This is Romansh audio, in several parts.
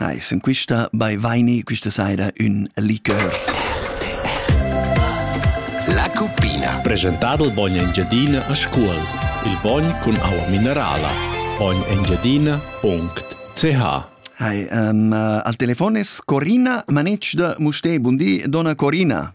Ai, sun quista baivaini quista saira ün lichör. La cuppina. Presentadel Bogn Engiadina a Scuol. Il bogn cun aua minerala. bognengiadina.ch Hi, um, uh, al telefon es Corina Manetsch da Mustè. Bundi, donna Corina.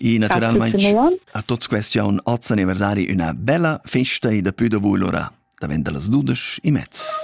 E naturalmente a tuts questiun oz anniversari üna bella festa e da pü da vul ora davent da las dudesch e mezz.